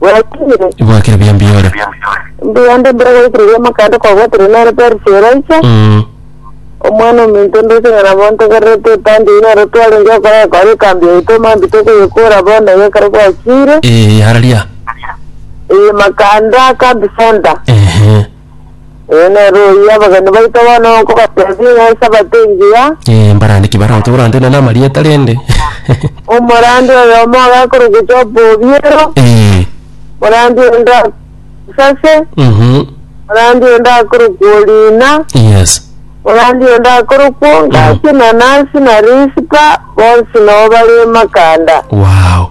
Bwatire. Ibwakire buya mbiyore. Mbiyande mbere goikire ria makande kwa bwatire nere Perisi Elisha. Mm. Omwana ominto ndose ng'a nabo ntogererete epande eye nero twarenge okorera kware ekambi yaito mambi tokoyekora bono eye ekero gwachire. Eh, yararia. Eye makande akambi senta. Ehe. Ee, nere oyio abageni baito bono nkobatebia ng'a esabato engiya, Eh, mbarande ki barao toborantena na amarieta rende. omorandi oyomo agakorokwa Job Obiero, Eh. morandi onde Sase, Mhm. morandi onde akorokwa Orina, Yes. morandi onde akorokwa Ngaki na Nasi na Rispa, bonsi nabo bare Makanda. Wow.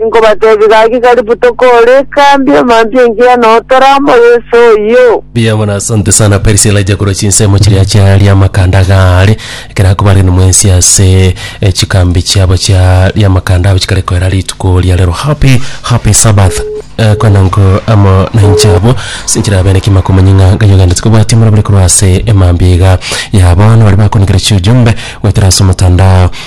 Inkobatebia gaki karibu tokore ekambi emantu engiya noo toramo Yeso oyio. Mbuya mono, asante sana Perisila aija korwa chinsemo chiria chiaria amakanda agaare, ekero akobarire nimwensi ase eh, chikambi chiabo chiaria amakanda abo chikare koera rituko ria rero. Happy, happy Sabbath. Eh, kwana nko amo nainche abwo sinchire abeneki makomanya ng'a Ngai ogendereti kobwatia omorabure korwa ase emambia iga ya bono baria bakonekire chiujumbe goetera ase omotandao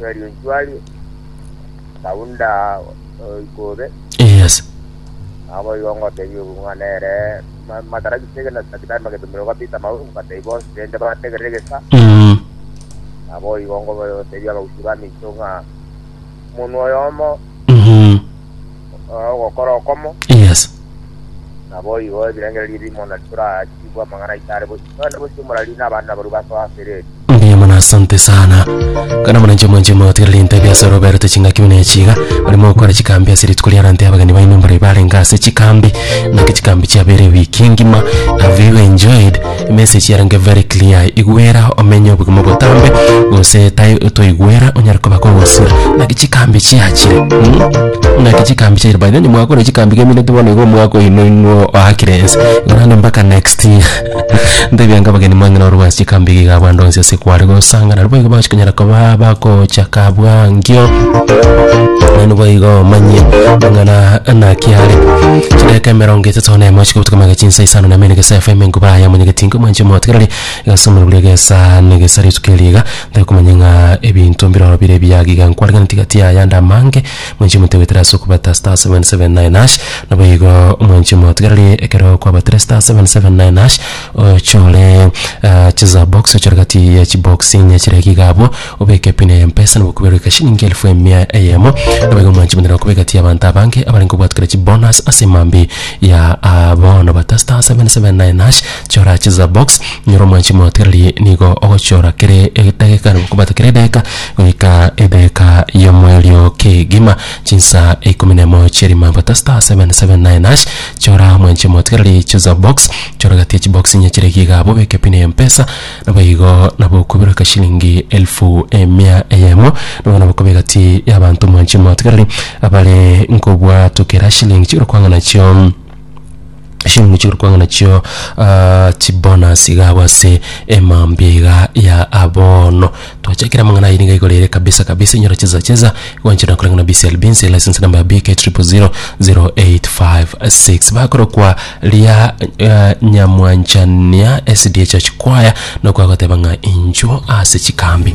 Rionchuari, Kaunda Ikobe, Yes. abo igo ngotebi obong'wa nere ma- matara gisege na sakitari magetumire kwa Peter Maungu batebi bonsi rende bategerere gesa Mm. abo igo ngotebi abagusii ba micho ng'a omonwa oyomo Mhm. eh, ogokora okomo Yes. nabo igo ebirengererio ebimo na titorachigwa amang'ana aito are bosi nonye bosi omorari na abana baru basoa ase ereri Mbuya mono asante sana kana muna nchimo nchimo tiriri ntebi ase roberete chingaki buna echiga barimo gokora chikambi ase rituko ria rante abageni baino mbare barenge ase chikambi naki chikambi chiabere wiki ngima have you enjoyed Emessage yarenge very clear igwera omenye obogima obotambe gose tai toigwera onyare koba kogosira naki chikambi chiachire mm? naki chikambi chiachire by the way nimwakora chikambi gemineti bono igo omwaka oino inwo oakire ense korende mpaka next year ntebiange abageni mwang'ina orwa ase chikambi iga iga bande onsi ase kware gosangana nabo igo bakonyara koba bakochaka abwa ngio naende boigo omanye ng'ana naki are chidaka emerongo etato. Ase onene mochika gotuka amagecho insa isano na mene gesa efema enkuba aya omonyegeti inke omwanche omotegereri gesa omorwori egesa na egesa rituko eriiga tari komanya ng'a ebinto mbiroro bire ebiya giga nkwarigeretie gati y'ayande amange mwanchi omote goetera ase okobata star seven seven nine hash naboigo omwanchi omotegereri ekero kwabatire star seven seven nine hash ochore chisabox ochore gati ya chibox chiria giga abwo. Obeke epine y'empesa nigo okobera goika chilingi elfu emia eyemo, nabaiga omwanche bwenere okoba egati y'abanto abange abare nkobwati kare chibonus ase emambia ya aa bono bata star seven seven nine hash chora chisa box nyora omwanchi motererie nigo ogochora kere edageka nigo okobwata kera edageka goika edageka y'omoerio kegima chinsa ikomi na emo chi'erimambo bata star seven seven nine hash chora mwanchi motererie chisa box chora egati ya chibox enye chire iga iga abwo obeke epine y'empesa Naboigo nabo okobera kashilingi elfu emia eyemo, nabo nabakoba egati y'abanto omwanche emotigareri, abare nkobwatokera shilingi chi'orokwang'a nachio shilingi chi'orokwang'a nachio ah, chibonasi iga abwo ase emambia iga ya abono. Twache kera mang'ana aye niga igoro ere kabisa kabisa inyora cheza cheza gwanchera na kurangana BC Albinsi license number ya BK 000856 bakoro kwa ria eh, nyamwanchania SDA church choir no kwa goteba ng'a injo ase chikambi